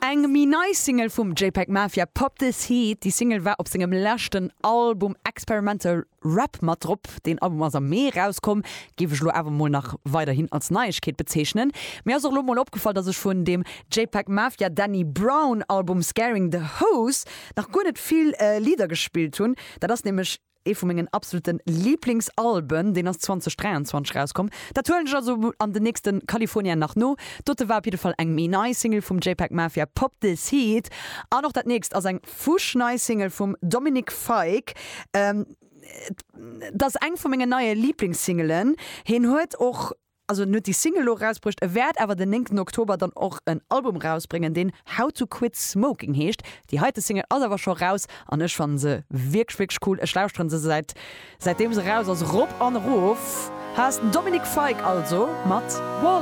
Eng méi nei Single vum JPEG Mafia, Pop This Heat. Déi Single war op sengem leschten Album Experimental Rap mat drop. Deen Album ass am Mee erauskomm, géif ech elo awer mol nach weiderhin als Neiegkeet bezeechnen. Mir ass och elo mol opgefall, dass ech vun dem JPEG Mafia Danny Brown Album Scaring The Hoes nach guer net vill Lidder gespillt hunn. Dat ass nämlech Ee vu mengen absoluten Lieblingsalben, deen ass 2023 erauskomm, dat huelen ech also an den nächste California nach no. Dote war op jidde Fall eng méi nei Single vum JPEG Mafia, Pop This Heat, an och dat nächst ass eng fusch nei Single vum Dominic Fike. Et ass eng vu mengen neie Lieblingssingelen, hien huet och. Also en huet déi Single elo erausbruecht, e wäert awer den néngten Oktober dann och en Album erausbréngen, deen How to Quit Smoking heescht. Déi heite Single ass awer scho raus an ech fannen se wierklech, wierklech cool. Ech lauschteren se säit säitdeem se raus ass rop an erof. Haas Dominic Fike also mat Walls.